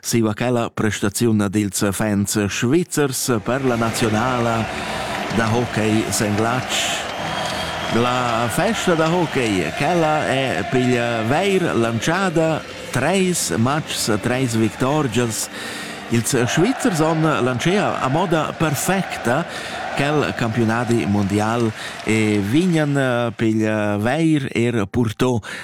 siu aquella prestaziun ad ils fans svizzers per la nazionala da hockey senglatsch. La festa da hockey, quella è piglia veir lanciada treis matchs, treis victorgias. Ils Svizzers on lancea a moda perfecta quel campionadi mundial e vignan piglia veir er purtò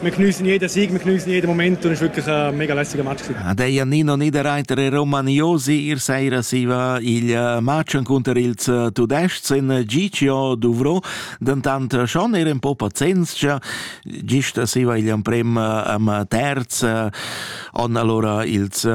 wir geniessen jeden Sieg, wir geniessen jeden Moment und es war wirklich ein mega lässiger Match. Ah, der Janino Niederreiter e Romagnosi ihr Seira si va il eh, match contro il eh, Tudesc in eh, Giccio Duvro, dentant schon era un po' pazienza, gist si va il emprem am terz on allora ils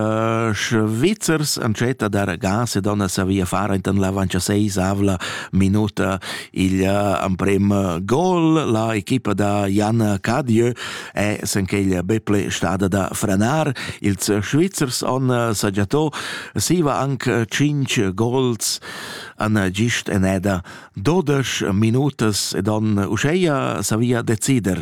Svizzers entschieden der Gas e donna savia fare in la 26 avla minuta Il emprem gol la equipa da Jan Cadieu è senqueglia Beple stada da frenar. Ils Svizzers han sagiato siva anche 5 gols an gist eneda 12 minutas ed han uscheia savia decider